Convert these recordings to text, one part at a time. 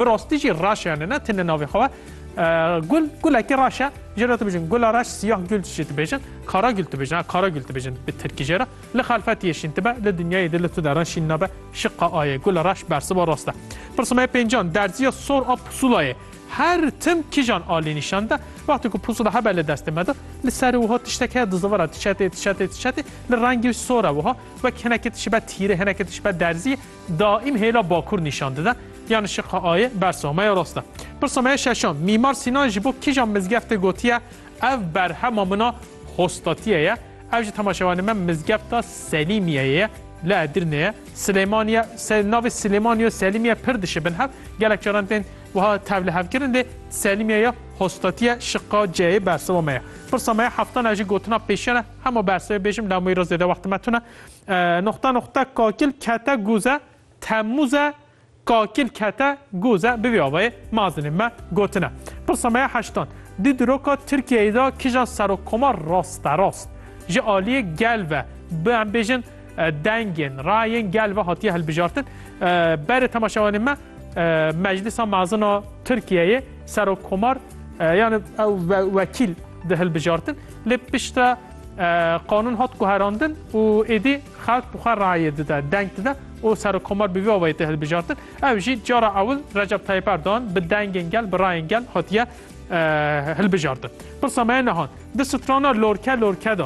Bi rastî jî reş e ne tenê navê xwe e. Gul gulekî reş e. Jê re dibêjin gula reş siyah gül jî dibêjin. Kara gül dibêjin. Kara gül dibêjin bi tirkî jê re. Li xelfetiyê şîn dibe, li dinyayê de li tu deran şîn nabe. Şiqa a ye. Gula reş bersiva rast e. Pirsima ye pêncan, derziya sor a pusulayê her tim kîjan alî nîşan de. Wextê ku pusula hebe li destê me de, li serê wiha tiştek heye dizivira tişetê, tişetê, tişetê, li rengê wî sor e wiha. Wek hinekê tişibe tîrê, hinekê tişibe derzî. Daîm hêla bakur nîşan dide. Yan şiqa A yê bersa me ya rast e. Pirsa me ya şeşan, Mîmar Sînan ji bo kîjan mizgeftê gotiye ev berhema min a Hostatiyê ye? Ev ji temaşevanên me mizgefta Selîmiyeyê ye li Edirnê ye. Silêmaniye, navê Silêmaniye û Selîmiye pir dişibin hev. Gelek caran tên wiha tevlihevkirin lê Selîmiye ya Hostatiye şiqa C yê bersiva me ye. Pirsa me ya heftan a ji gotina pêşiyan e. Hema bersivê bêjim lewmeyî re zêde wextê me tune. Noqta noqta kakil kete guze Temmuz e kakil kete guze bi vî avayê mazinên me gotine. Pirsa me ya heştan, Di diroka Tirkiyeyê de kija serokkomar rasterast ji aliyê gel ve bi em bêjin dengên, rayên gel ve hatiye hilbijartin. Berê temaşevanên me Meclisa Mezina Tirkiyeyê serokkomar yani ew wekîl di hilbijartin lê pişta Qanûn hat guherandin û êdî xelk bi xwe rayê dide, deng dide û Serokkomar bi vî awayî tê hilbijartin. Ew jî cara ewil Recep Tayyîp Erdogan bi dengên gel, bi rayên gel hatiye hilbijartin. Pirsa me ye niha, di strana lorke lorke de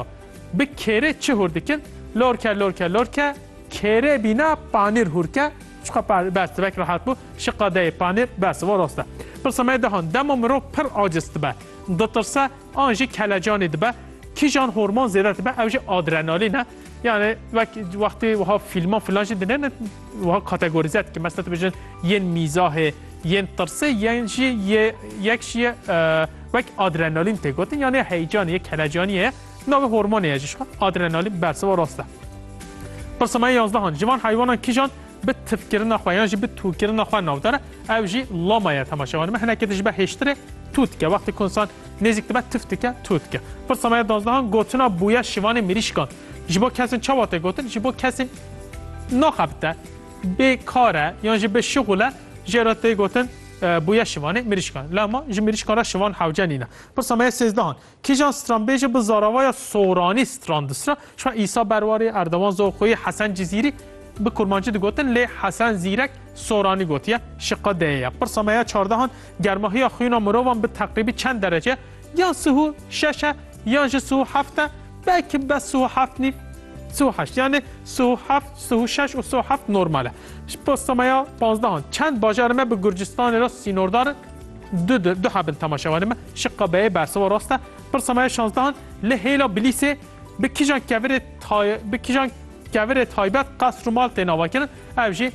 bi kêrê çi hûr dikin? Lorke lorke lorke kêrê bîna panîr hûr ke, çiqas par berz tibek rehat bû, şi qadeyê panîr berz. Rast e. Pirsa me ye niha, dema mirov pir aciz dibe, ditirse An jî kelecanê dibe. Kîjan hormon zêde dibe ew jî adrenalîn e. Yani wek wextê wiha fîlman filan jî dine wiha kategorîze dikin. Mesela tu bijin yên mîzahê, yên tirsê yên jî yek jî ye wek adrenalîn tê gotin yani heyecanê ye kelecanî ye. Navê hormonê ye jî adrenalîn bersiva rast e. Pirsema 11 Ciwan heywanan kîjan bi tifkirina xwe yan jî bi tûkirina xwe navdar e, ew jî lama ye temaşe wan me hinekê dijibe hêştirê tû dike wextê ku insan nêzîk dibe tif dike tû dike. Pirsa me ya dozdehan gotina bûye şivanê mirîşkan. Ji bo kesên çawa tê gotin ji bo kesên naxebite bê kar e yan jî bê şixul e jê re tê gotin bûye şivanê mirîşkan. Lama ji mirîşkan re şivan hewce nîne. Pirsa me ya sêzdehan Kîjan stranbêje bi zaravaya soranî strandisra, şima Îsa Berwarê, Erdogan Zoxoyî, Hesen Cizîrî bi kurmancî digotin lê Hesen Zîrek soranî gotiye, şiqa deyê ye. Pirsa me ya çardehan, germahiya xwîna mirovan bi teqrîbî çend derece ye? Ya sih û şeş e, ya jî sih û heft e, belkî bes sih û heft nîv, sih û heşt. Yanî sih û heft, sih û şeş û sih û heft normal e. Ji pirsa me ya panzdehan, çend bajarê me bi Gurcistanê re sînordar in? Du du du habin tamaşevanê me şiqa beyê bersiva rast e. Pirsa me ya şanzdehan li hêla Bilîsê bi kîjan kevirê tay bi kîjan kevirê taybet qesr û mal tên avakirin ev jî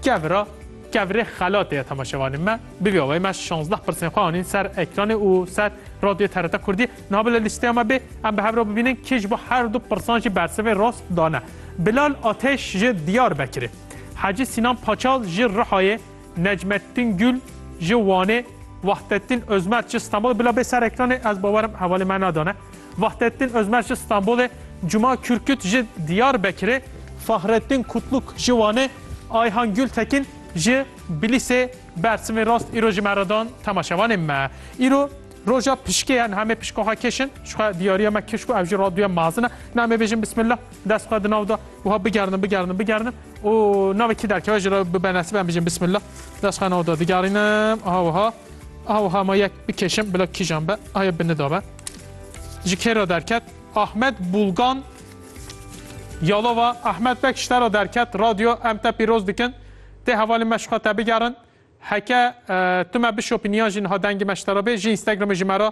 kevira kevirê xelatê ye temaşevanê me. Bi vî awayî me şanzdeh pirsên xwe anîn ser ekranê û ser radyoyê TRT Kurdî. Niha bila lîsteya me bê em bi hev re bibînin kê ji bo her du pirsan jî bersivê rast dane. Bilal Ateş ji Diyarbekirê, Hecî Sînan Paçal ji Rihayê, Necmettin Gül ji Wanê, Vahdettin Özmer ji Stenbolê, bila bê ser ekranê ez bawerim hevalê me nadane. Vahdettin Özmer ji Stenbolê, Cuma Kürküt ji Diyarbekirê, Fahrettin Kutluk ji Wanê, Ayhan Gültekin ji Bilisê bersivên rast îro ji me re dan temaşevanên me. Îro roja pişkê ye niha em ê pişka xwe kişin. Ji xwe diyariya me kiş ku ev jî raduya mezin e. Niha em ê bêjin bismillah dest xwe di nav de wiha bigerinin bigerinin bigerinin. û navê kî derkeve ji re bi benasîb em bijîm bismillah dest xwe navda digerînim aha wiha aha wiha ma yek bikêşim bila kîjan be aye bi nida be ji kê re derket Ahmed Bulgan Yalova Ahmed Bek ji te re derket radyo em te pîroz dikin tê hevalê me ji xwe te bigerin heke e, tu me bişopî niya jî niha dengê me ji te re bê ji Instagramê ji me re